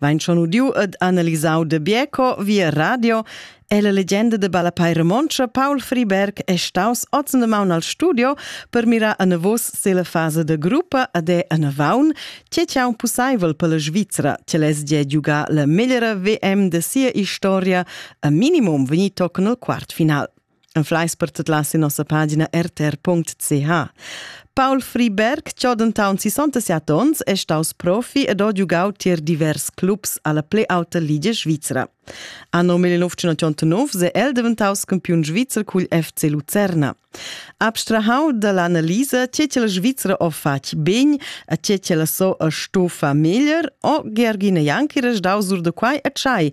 Vain schon udiu ed analisau de Bieco via radio e la legenda de ballapei romontscha Paul Friberg è staus oz de maun al studio per mirar a navos se la fase de gruppa ad è a navaun, che ciao possibel per la Svizzera, che les ge giugar la meglera VM de sia historia a minimum vegnitoc nel quart final. Fleis per tut las in nossa pagina rtr.ch. Paul Friberg, ciò dentant 67 onns, è staus profi ed ha giugau tier divers clubs alla play auta Liga Svizra. Anno 1989 è el diventaus campiun svizzer cugl FC Lucerna. Abstrahau dall'analisa c'è che la Svizra o fatg ben, a c'è che la so a stofa meglier, o Gergina Janki restau sur de quai a tschai,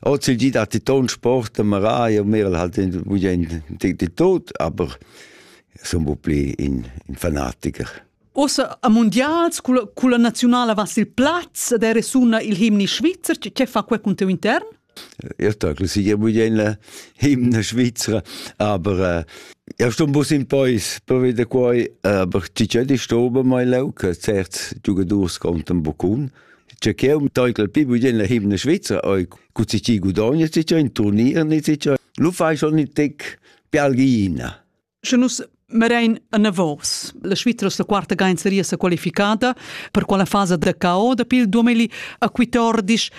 Oz il dit hat die Tonsport, der Maraja, Merl hat in Budien die, die Tod, aber sono un po' più in, in fanatiker. Ossa a mondials con la nazionale vas il plaz ed è resuna il himni svizzer, che fa quel con teu intern? Ich sage, sie geben jene Hymne Schweizer, aber äh, ich sto ein bisschen Peus per wieder qua, aber ci c'è di stobe mai lauca, certs giocators kommt ein Bocun. Che cheu teugel pi bugien la himne Schweizer oi cu si ci gudogna si c'è in turnier ni si c'è lu fai schon ni tec pialgina. Sche nus Merain Anavos. La Svizra la quarta gain seria sa qualificada per quella fasa da cao da pil 2014.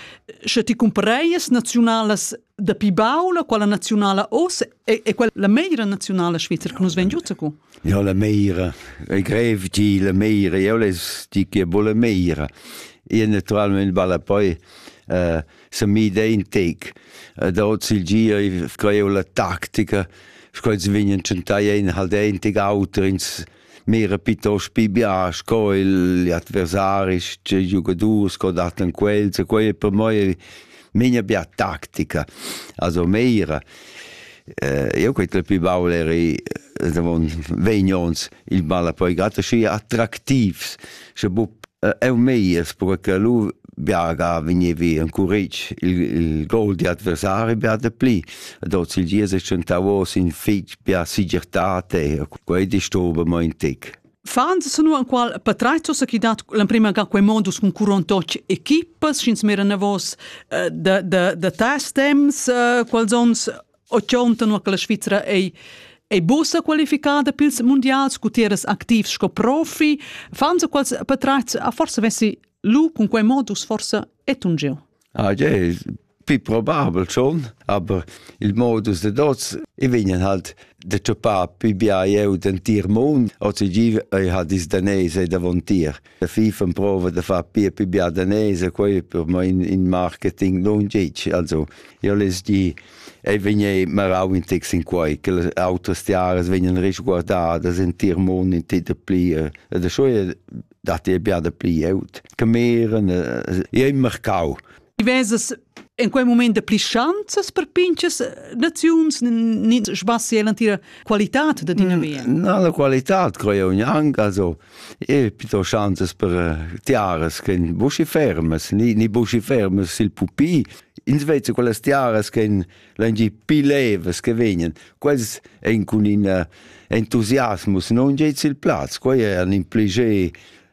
Sche ti cumpreias nazionalas dapi baul quella naziunala oz è, è quella la meira naziunala svizra che nus vegn giu cu? Ja la meira e grev di la meira io les di che bo la meira e naturalmente balla poi uh, se mi de in tec uh, da oz il gia sco io la tactica sco ils vegnan chantai ein halt ein tec auter ins Mira pitost pi bia sco igl adversari, sche giugadurs co dattan quels, e quei è per moi menia bia tactica. Also Meira, eh, io quei tre pi baul eri eh, davon vegn ons il balla poi gatta schi attraktivs. sche buc eu meies per che lu biaga vegnevi encuretg il, il gol di adversari bia de pli ad oz il gies è tschentavos in fitg bia sigirtate quei disturba mo in tec Fans sunu anqual patratsos chi dat l'emprima ga quei modus cun curontoc equipas sch'ins mira navos uh, da, da, da tes temps uh, quals ons 80 nua che la Svizra ei ei bussa qualificada pils mundials cu tiras activs sco profi, fan se quals patratgs a forse vessi lu cun quei modus forse etungiu. Ah, je, più probabel schon, aber il modus de dots i vegnen halt de tschupar più bia jeu den tir mund, ozi gi ei ha dis danese davon tir. da FIFA prova da far pia più bia danese quei per ma in, in marketing non dici also io les di ei vegni marau in tex in quei che le autres jahres vegnan risguardadas in tier mon in ti da pli e da so dat dir bia da pli aut che meren e im marcau Ti vesas in quei moment de pli schanzas per pinches naziuns nin sbassi e l'antira qualità da tina mm, via. No, la qualità crei unian also e pito schanzas per eh, tiaras che in busci fermas, ni ni busci fermas sil pupi. In Svezia quelle tiaras che in langi pi levas che vegnan, quels ein cun in eh, entusiasmus non geit sil plaz, quei è un impliger